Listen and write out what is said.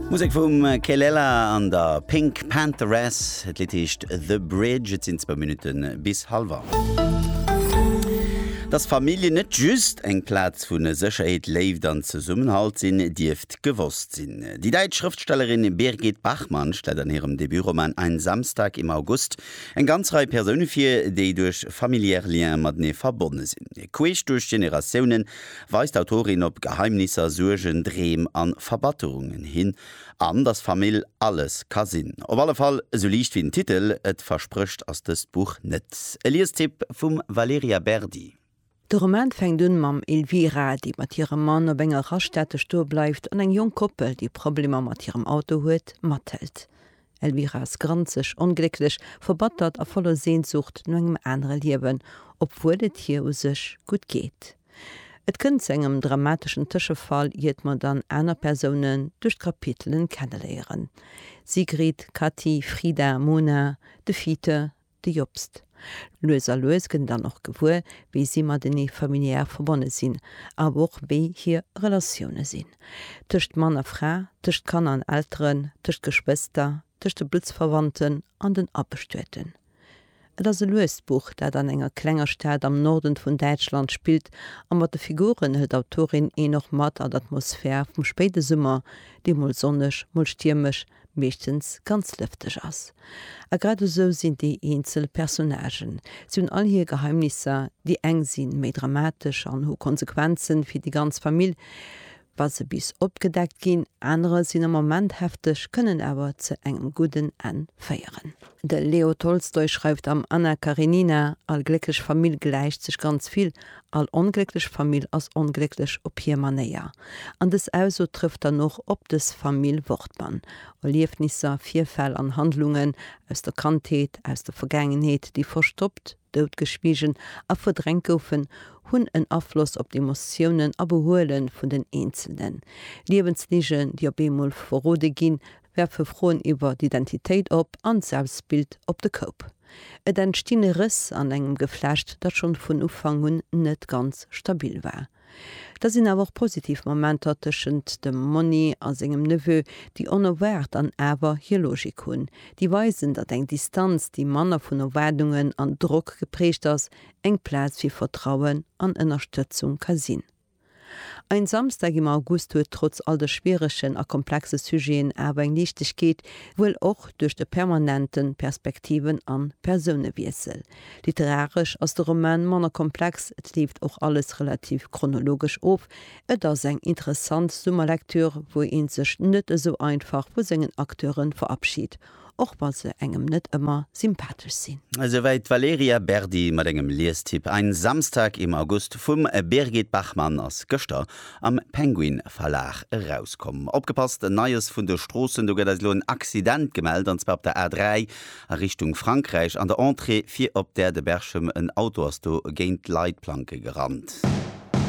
Musek vum Kelela an der Pink Pantheress. Et Lidd heescht The Bridge. Et sinn zwou Minutte bis hallef acht. Dass Familljen net just eng Plaz vu Sécherheet, Léift an Zesummenhalt sinn, dierft gewosst sinn. Déi däitsch Schrëftstellerin Birgit Bachmann stellt an hirem Debutroman Ein Samstag im August eng ganz Rei Persoune vir, déi duerch familiär Liens matenee verbonne sinn. Queesch duerch d'Generatiounen weist d'Autorin op Geheimnisser, Suergen, Dreem a Verbatterungen hin, an datt Famill alles ka sinn. Op alle Fall, esou liicht wéi den Titel et versprécht ass dëst Buch net. E Liestipp vum Valerija Berdi. De Roman fänkt un mam Elvira, déi mat hirem Mann op enger Raststätte stoe bleift an eng jonk Koppel, déi Problemer mat hirem Auto huet, mathëlt. Elvira Scrantzig, onglécklech, verbattert a voller Sehnsucht no engem anere Liewen, obwuel et hir u sech gutt geet. Et kënnt zu engem dramateschen Tëschefall, iert mer dann aner Persounen duerch d'Kapitelen kenneléieren, Sigrid, Kati, Frida, Mona, de Fiete, De Jobst. Lues a lues gëtt en dann och gewuer, wéi si matenee familiär verbonne sinn, awer och wéi hir Relatioune sinn. Tëscht Mann a Fra, tëscht Kanner an Elteren, tëscht Geschwëster, tëscht de Bluttsverwandten an den Abestueten. Et ass e luest Buch, dat an enger klenger Stad am Norden vun Däitschland spillt, a mat de Figuren hëlt d'Autorin een och mat an d'Atmosphär vum spéide Summer, déi mol sonneg, mol stiermesch, meeschtens ganz lëfteg ass. A grad esou sinn déi eenzel Personnagen, si hunn all hir Geheimnisser, déi eng si méi dramatesch an hu Konsequenzen fir déi ganz Famill, wa se bis opgedeckt ginn, anerer sinn am Moment hefteg, kënnen awer zu engem gudden Enn féieren. De Leo Tolstoi schreift am Anna Karenina, All glécklech Famill gläicht sech ganz vill All onglécklech Famill ass onglécklech op hir Manéier. An dës Ausso trëfft dann och op dës Famill Wortmann. Erliefnisser, Virfäll an Handlungen aus der Kandheet, aus der Vergaangenheet, déi verstoppt, doutgeschwiegen a verdrängt goufen, hunn en Afloss op d'Emotiounen a Behuele vun den Eenzelnen. Liewensligen, déi op eemol verrode ginn, werfe Froen iwwer d'Identitéit op an d'Selbstbild op de Koup. Et entstinn Rëss an engem Geflecht, dat schonn vun Ufank un net ganz stabil war. Da sinn awer och positiv Momenter tëschent dem Monni a sengem Neveu, déi onerwaart an awer hir Logik hunn. Déi weisen, datt eng Distanz, déi manner vun Erwaardungen an Drock geprägt ass, eng Plaz fir Vertrauen an Ënnerstëtzung ka sinn. Ein Samstag im August huet trotz all de schwieregen a komplexe Sujeten awer eng Liichtegkeet, wuel och duerch de permanente Perspektiven an Persounewiessel. Literaresch ass de Roman manner komplex, et leeft och alles relativ chronologesch of. Et ass eng interessant Summerlektür, wou een sech net esou einfach vu sengen Acteuren verabschied. och wa se engem net ëmmer sympathesch sinn. Esouwäit d'Valerija Berdi mat engem Liestipp Ein Samstag im August vum Birgit Bachmann, ass gëschter am Penguin Verlag erauskomm. Opgepasst, Neies vun de Stroossen, Do gëtt eis elo en Accident gemellt, an zwar op der A3 a Richtung Frankräich, an der Entrée fir op der de Berchem. En Auto ass do géint d'Leitplanke gerannt.